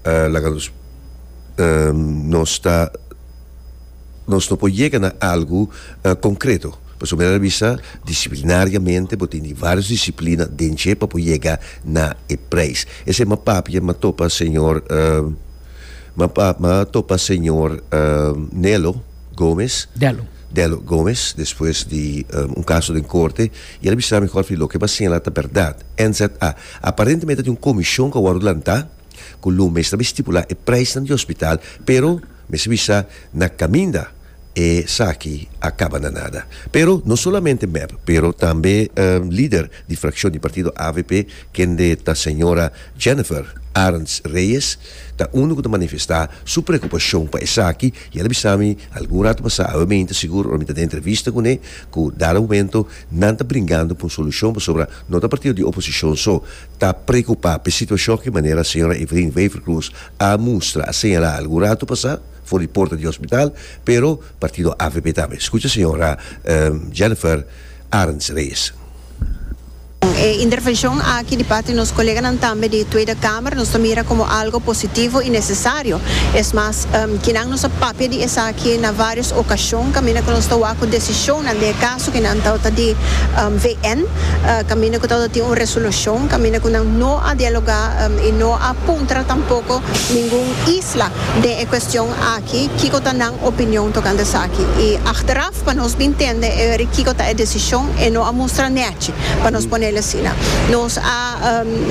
Laga nos nos ta nos no por yega na algu konkreto. Pasobra mira ta bisa disiplinariamente bo tin di vários disiplina den dje pa bo yega na e preis. Esei m'a papia, m'a topa señor m'a m'a topa señor Nelo Gomez, Delo. Delo Gomez, despues di un kaso den korte i el a bisa mi Jorfi loke bo a siñalá ta bèrdat, NZA. Aparentemente ta tin un komishon ku a wòrdu lantá. Ku lo mester mi stipulá e preisnan di hospital, pero mester mi sa na kaminda esaki a kaba na nada. Pero no solamente mep, pero tambe lider di frakshon di partido avp, kende ta señora Jennifer Arends Reyes, ta unu ku ta manifestá su preokupashon pa esaki i el a bisa mi algun ratu pasá, awe mi inta sigur, ora mi ta den entrevista kuné, ku dado momento nan ta bringando pa un solushon pasobra no ta partido di oposishon so, ta preokupá p'e situashon ku manera señora Evelyn Wever-Croes a mustra, a señalá algun ratu pasá for di porta di hospital, pero partido avp tambe. Skucha señora Jennifer Arends-Reyes. Kon e intervenshon aki di parti nos koleganan tambe di Tweede Kamer nos ta mira komo algo positivo i nesesario. Es mas, kinan nos a papia di esaki na vários okashon kaminda ku nos ta wak ku desishonnan den e. Sukinan tabata di VN kaminda ku tabata tin un resolushon kaminda ku nan no a dialogá i no a puntra tampoko ningun isla den e kuestion aki kiko ta nan opinion tokante esaki. I achteraf pa nos bin tende e weri kiko ta e desishon e no a mustra nèchi, pa nos ponel asina. Nos a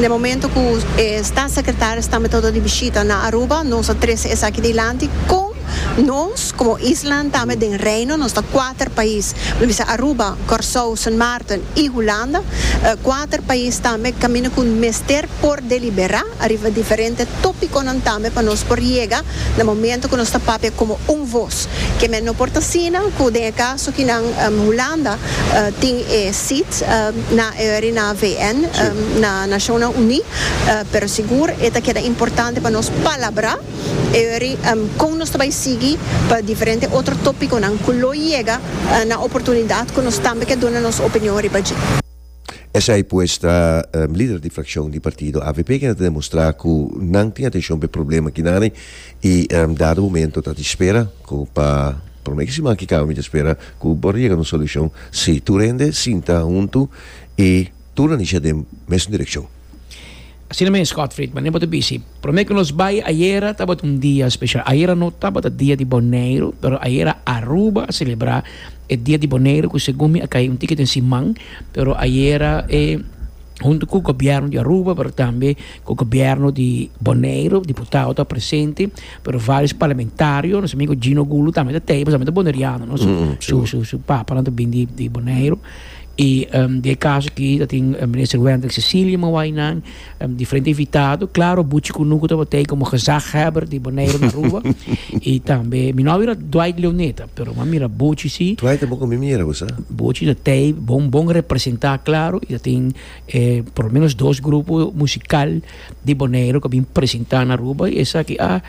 na e momento ku e Statssekretaris tambe tabata di bishita na Aruba nos a trese esaki dilanti kon. Nos, komo islanan tambe den Reino, nos ta kuater pais, lo bisa Aruba, Kòrsou, Sint Maarten i Hulanda, kuater pais tambe kaminda ku mester por deliberá ariba diferente tópikonan tambe pa nos por yega na momentu ku nos ta papia komo un vos. Kemey no por ta asina ku den e kaso ki nan Hulanda tin e seat na e ori na VN, na Nashonnan Uní, pero sigur e ta keda importante pa nos palabrá. Eri kon nos ta bai sigui pa diferente otro topiconan cu lo yega na oportunidad cu nos tambe ke duna nos opinion riba dje. Esai pues ta lider di fraccion di partido avp kende ta demostra cu nan tin atencion p'e problema akinani y dado momento ta di spera cu pa por lo menos e siman aki caba mi ta spera cu por yega na un solucion si tur hende sinta hunto y tur a nisha den mesun direccion. Asina mes Scott Friedman, e bo ta bisi, prome ku nos bai ayera tabata un dia speshal. Ayera no tabata dia di Boneiru, pero ayera Aruba a selebrá e dia di Boneiru ku segun mi a kai un tiki den siman, pero ayera e huntu ku gobièrnu di Aruba pero tambe ku gobièrnu di Boneiru, diputado tabata presente, pero vários parlamentario, nos amigu Gino Gulu tambe ta tei, pasobra e ta boneriano, no? Su su su papanan ta bini di Boneiru. E di e kaso aki ta tin Minister Wendel Cecilia Mawainan, diferente invitado, klaro buchi ku nu ku ta batei komo gezaghebber di Boneiru na Aruba, i tambe mi no a mira Dwight Leoneta, pero mi a mira buchi si, Dwight ta bon ku mi mira bo sa. buchi ta tei bon bon representá klaro i ta tin e por lo menos dos grupo musikal di Boneiru ku a bin presentá na Aruba i esaki a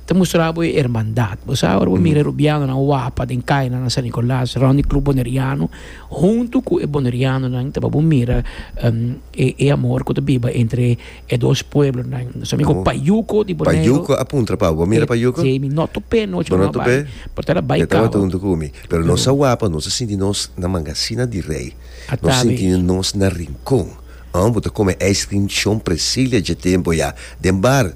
ta mustra bo e ermandat. Bo sa ora bo mira e rubianonan wapa den kainan na San Nicolas rònt di Club Boneriano. Huntu ku e bonerianonan ta babu mira e amor ku ta biba entre e dos pueblonan. Nos amigo Payuco di Bonero. Payuco a puntra pa bo. Mira Payuco. Sí, mi no tup'é anochi. Bo no tup'é? Pero ta na bai cabo. E tabata huntu ku mi. Pero nos a wak pa nos a sinti nos na manga asina di rei. A ta be. Nos sinti nos na rincon. Bo ta kome ice cream Shon Presilia dje tempu ya den bar.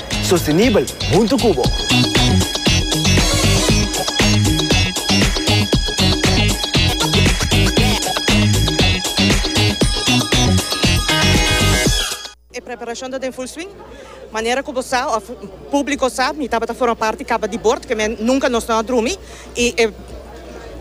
Sostenibel huntu cu bo. E preparacion ta den full swing. Manera cu bo sa of publico sa mi tabata forma parti caba di bord, que men nunca nos no a drumi y e.